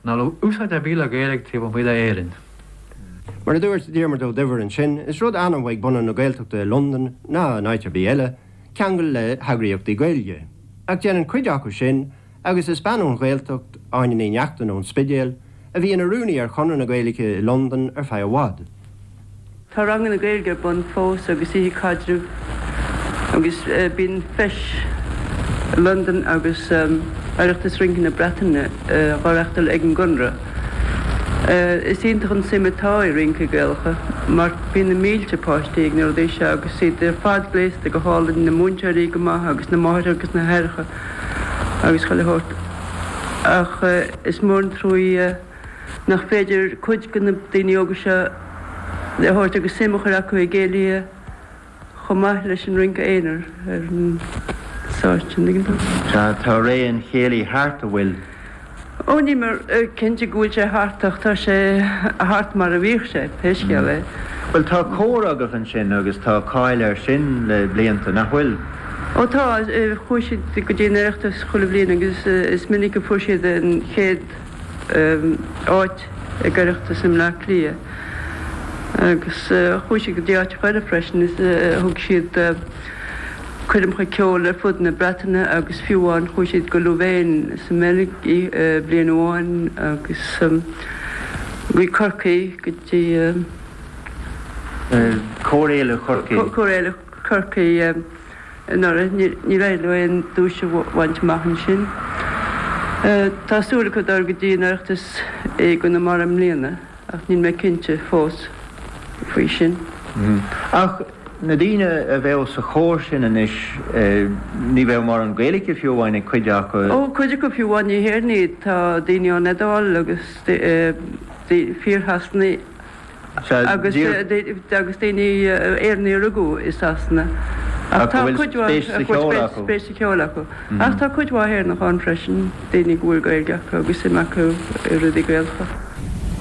Níl úsáid ar bith le Gaeilg taobh amuigh de Éirinn. Mar a dúirt Diarmaid Ó Duibhir ansin, is rud annamh ag bunadh na Gaeltachta i Londain, ná in áit ar bith eile, ceangal le heagraíochtaí Gaeilge. Ach déanann cuid acu sin, agus is bean ón Ghaeltacht, Áine Ní Neachtain ón Spidéal, a bhí ina rúnaí ar Chonradh na Gaeilge i Londain ar feadh i bhfad. Tá ranganna Gaeilge ar bun fós agus oíche caidrimh agus bíonn Feis Londain agus Oireachtas Rince na Breataine dhá reachtáil ag an gConradh. Is iontach an tsuim atá i rincí Gaelacha mar bíonn na mílte páistí ag na rudaí seo agus iad ar fad gléasta go hálainn, na múinteoirí go maith agus na máithreacha agus na haithreacha agus chuile shórt. Ach is mór an truaí. nach féidir cuid de na daoine óga seo a thabhairt agus suim a chur acu i gcéilithe chomh maith leis an rince aonair ar an stáitse, tuigeann tú? Sea, tá ré an chéilí thart, an bhfuil? Ó, níl mé cinnte go bhfuil sé thart ach tá sé thart mar a bhíodh sé, pé scéal é. Bhuel, tá cór agaibh ansin agus tá cáil air sin le blianta, nach bhfuil? Ó, tá. Chuaigh siad go dtí an Oireachtas chuile bhliain agus is minic a fuair siad an chéad. áit ag an Oireachtas i mBleá Cliath agus chuaigh siad go dtí áiteacha eile freisin is thug siad coirmeacha ceoil ar fud na Breataine agus fiú amháin chuaigh siad go Louvain sa mBeilg bliain amháin agus go Corcaigh go dtí Cór Fhéile Chorcaí. Cór Fhéile Chorcaí. anuraidh, níor éirigh leo aon duais a bhaint amach ansin. Tá súil acu dul go dtí an Oireachtas i gConamara i mbliana ach níl mé cinnte fós faoi sin. Ach na daoine a bheadh sa chór sin anois, ní bheadh mórán Gaeilge fiú amháin ag cuid acu. Ó, cuid acu fiú amháin, ní hÉireannaigh iad. Tá daoine ón Iodáil agus fíor-Shasanaigh agus daoine, Éireannaigh a rugadh i Sasana ach tá cuid mhaith a bhfuil spéis sa cheol acu. Ach tá cuid mhaith Éireannach ann freisin, daoine go bhfuil Gaeilge acu agus suim acu i rudaí Gaelacha.